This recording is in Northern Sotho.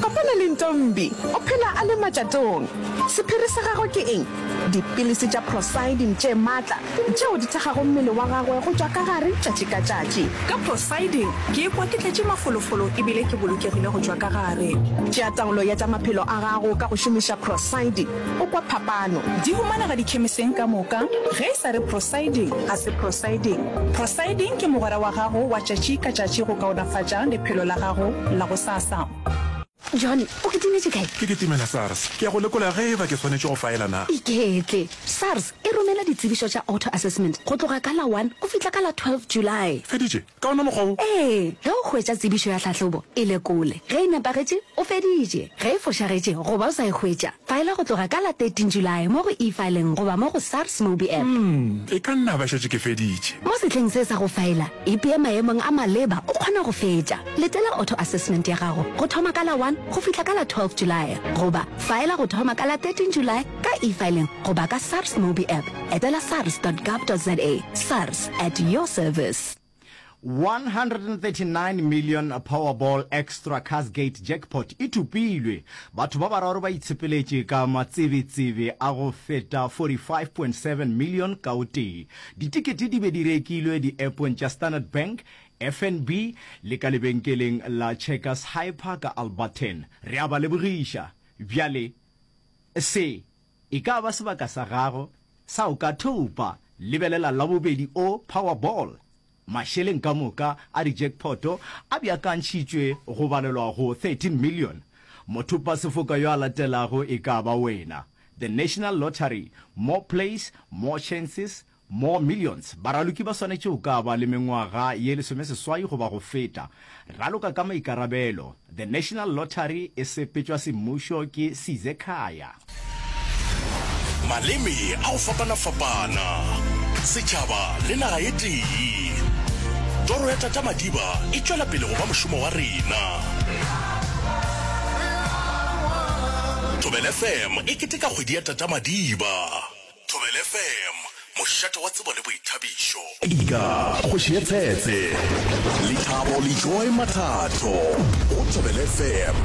Kopana le Ntombi, o phela a le matšatong. Sephiri sa gagwe ke eng? Dipilisi tša Procydim tše matla, tšeo di thekgago mmele wa gagwe go tšwa ka gare tšatši ka tšatši. Ka Procydim ke ikwa ke tletše mafolofolo e bile ke bolokegile go tšwa ka gare. Tšea taolo ya tša maphelo a gago ka go šomiša Procydim, o kwa phapano. Di humanega dikhemiseng ka moka. Ge e sa re Procydim, ga se Procydim. Procydim ke mogwera wa gago wa tšatši ka tšatši go kaonafatša lephelo la gago la go sa. Sassa. John, o kitimetše kae? Ke kitimela SARS. Ke ya go lekola ge eba ke swanetše go faela na. Iketle. SARS e romela ditsebišo tša auto assessment go tloga ka la one go fihla ka la twelve July. Feditše? Ka ona mokgwa wo? Ee, ge o hwetša tsebišo ya tlhahlobo, e lekole. Ge e nepagetše, o feditše. Ge e fošagetše goba o sa e hwetša, faela go tloga ka la thirteen July mo go E-Filing goba mo go SARS Mobi App. Umm, e ka nna ba šetše ke feditše. Mo sehleng se sa go faela, ipee maemong a maleba o kgona go fetša. Letela auto assessment ya gago go thoma ka la 1 go fihla ka la 12 Julae goba faela go thoma ka la 13 Julae ka e-filing goba ka SARS Mobi app. Etela sars.gov.za. SARS, at your service. 139 million Powerball Extra Cashgate Jackpot e thopilwe, batho ba bararo ba itshepeletše ka matsebetsebe a go feta 45.7 million ka o tee. Ditikete di be di rekilwe di-appong tša Standard Bank, FNB le ka lebenkeleng la Checkers Hyper ka Alberton. Re a ba lebogiša. Bjale, se e ka ba sebaka sa gago sa o ka thopa. Lebelela Labobedi o, Powerball. Mašeleng ka moka a di-jackpot a beakantšhitšwe go balelwa go thirteen million. Mothopasefoka yo a latelago e ka ba wena. The National Lottery, More plays, more chances, Mo Millions, baraloki ba swanetše go ka ba le mengwaga ye lesomeseswai goba go feta. Raloka ka maikarabelo. The National Lottery e sepetšwa semmušo ke Size Khaya. Maleme a go fapana-fapana, setšhaba le naga e tee. Toro ya Tata Madiba e tšwela pele go ba mošomo wa rena. Thobela FM e keteka kgwedi ya Tata Madiba. Thobela FM, mošate wa tsebo le boithabišo. Ika, kgoši ye tsetse. Lethabo le Joy Mathato go Thobela FM.